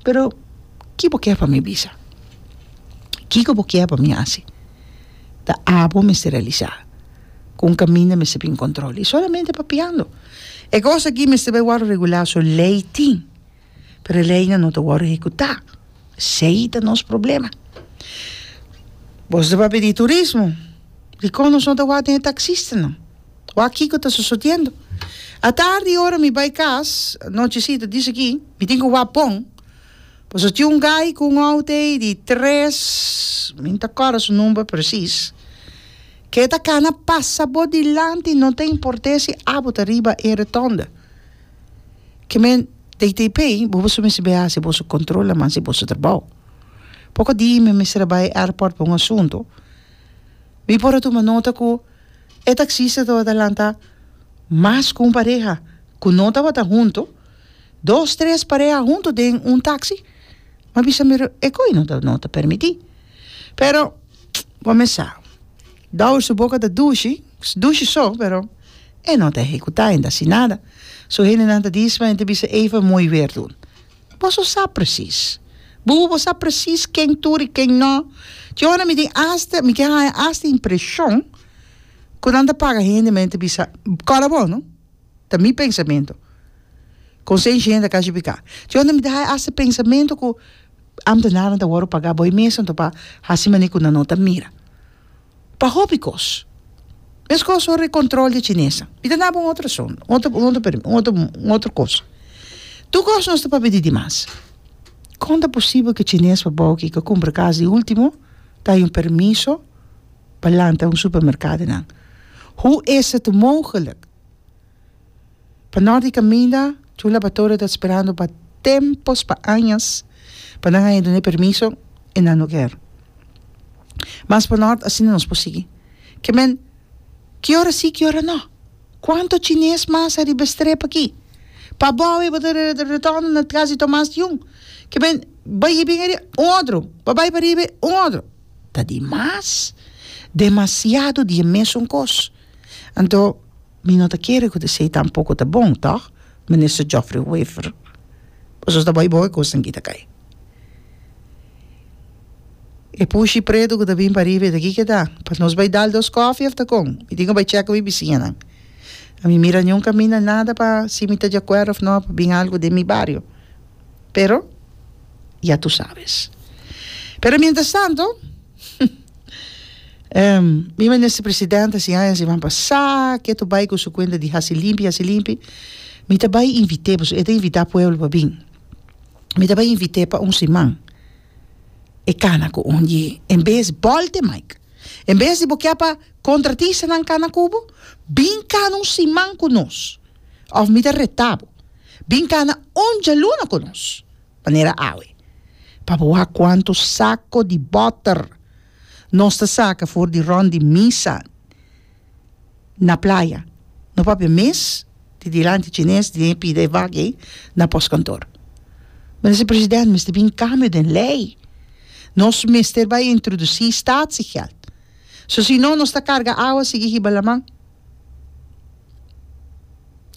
Pero, ki bo kier pa mi bisa? Kiko bo kier pa mi hasi? Ta abo mester realisá ku un kaminda mester bin kontrol i solamente papiando. E kos aki mester bai wòrdu regulá, so lei tin, pero e leinan no ta wòrdu ehekutá. Si ei ta nos problema. Bo tabata di turismo, dikon nos no ta wak den e taksistanan? Wak kiko ta sosodiendo. A tardi ora mi bai kas, nochecita di esaki, mi tin ku wak bon, pasobra tin un gai ku un oud ei di tres, mi no ta akorda su number presis, ku e ta kana pasa bo dilanti no ta importe si abo ta riba e retonda. Ke men deit'ei pei, bo por su mester bai hasi boso kontrol laman si boso ta bou. Poko di mi mester a bai airport pa un asuntu, mi por a tuma nota ku. E taksista tabata lanta mas ku un pareha ku no tabata huntu, dos tres pareha huntu den un taksi, m'a bisa mi e koi no ta no ta permití. Pero bo mes sa, Douwes su boka ta dushi, dushi so, pero e no ta ehekutá, e no ta hasi nada. Su hendenan ta disma, e ta bisa ey for mooi weer doen. Boso sa presis. Bubu bo sa presis ken tur i ken no. Dje ora mi tin asta, mi ke haña asta impreshon ku nan ta paga hende men ta bisa kòrda bo no. Ta mi pensamentu. Kon seish hende a kasi pika. Dje ora mi ta haña asta pensamentu ku ambtenanan ta wòrdu pagá, bo e mes anto pa hasi mane ku nan no ta mira. Pa hopi kos. Meskos ora e kontrol di e chinesa. Mi ta daba un otro razon, un otro, un otro per, un otro, un otro kos. Tur kos nos ta papidi di mas. Kon ta posibel ku e chines pa bou aki ku a kumpra kas di ultimo ta hay un permiso pa lanta un supermerkado nan? Hoe is het mogelijk? Pa nor di kaminda, tur laboratorio ta sperando pa tempos, pa añas, pa nan haña dun'é permiso, i nan no ker. Mas pa nort, asina nos por sigui. Ke men, ki ora sí, ki ora no? Kuantu chines mas ariba e strep aki? Pa abou e bo ta retondo na kas di Tomas di Jung? Ke men, bai e bin ariba, un otro, bo bai pariba, un otro. Ta di mas. Demasiado di e mesun kos. Anto. Mi no ta kere ku esei tampoko ta bon, tòg, Minister Geoffrey Wever? Boso ta bai bo e kosnan aki ta kai. E pushi pretu ku ta bin pariba, e ta kiko e ta? Pa nos bai dal dos kòfi òf ta kon? Mi tin ku bai chèka mi bisiñanan. Mi mira nunka mina nada pa si mi ta di akuerdo òf no pa bin algu den mi bario. pero ya tu sabes. Pero mientras tanto, em, mi minister president a siña si ban pa sa ke to bai ku su kuenta di hasi limpi, hasi limpi, mi ta bai invite pasobra e ta invita pueblo pa bin. Mi ta bai invite pa un siman e kana ku un ye en bes bolte maik. En bes di bo kia pa contratisanan kana ku bo, bin kana un siman ku nos. Òf mi ta retá bo, Bin kana un djaluna ku nos, manera awe, pa bo waha kuantu sako di bòter nos ta saka for di rònt di misa na playa. No papia mes di dilanti chines di den pida e vak ei na pòskantor. Mester president, mester bin kambio den lei. Nos mester bai introdusí staatsgeld. So si no, nos ta karga awa sigui hiba laman.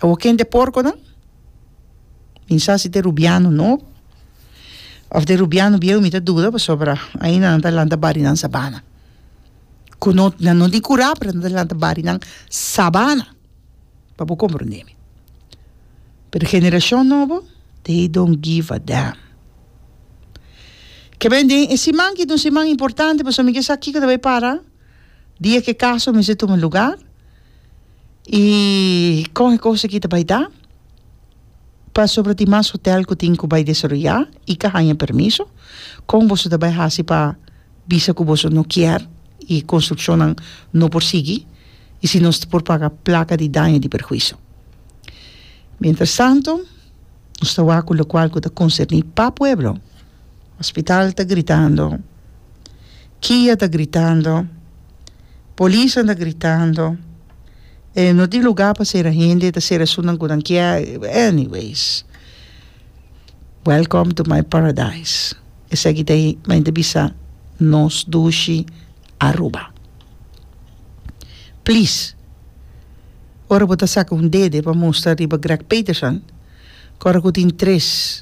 Awo ken t'e porkonan? Tin sa si t'e rubiano no? Of t'e rubiano bieu mi ta duda pasobra ainda nan ta lanta barinan sabana ku no nan no tin kura pero nan ta lanta barinan sabana pa bo komprondé mi pero generashon nobo they dont give a damn ke b'en den e siman ki ta un siman importante pasobra mi ke sa kiko ta bai para dia ke kaso mester tuma luga y con e cosa ki ta bay ta pasobra tin mas hotel cu tin cu bay desaroya y ca haya permiso con boso ta bay haci pa bisa cu boso no kier y construccionnan no por sigui y si nos por paga placa di daño di perhuiso mientras tanto Nos ta wak ku lokual ku ta konserní pa pueblo. Hospital ta gritando, kia ta gritando, polisnan ta gritando, e no tin lugá pa sera hende, e ta sera esun nan ku nan kier, anyways, welcome to my paradise. Esaki ta e, men ta bisa nos dushi. Aruba. Please, ora bo ta saka un dede pa mustra riba Greg Peterson, kòrda ku tin tres.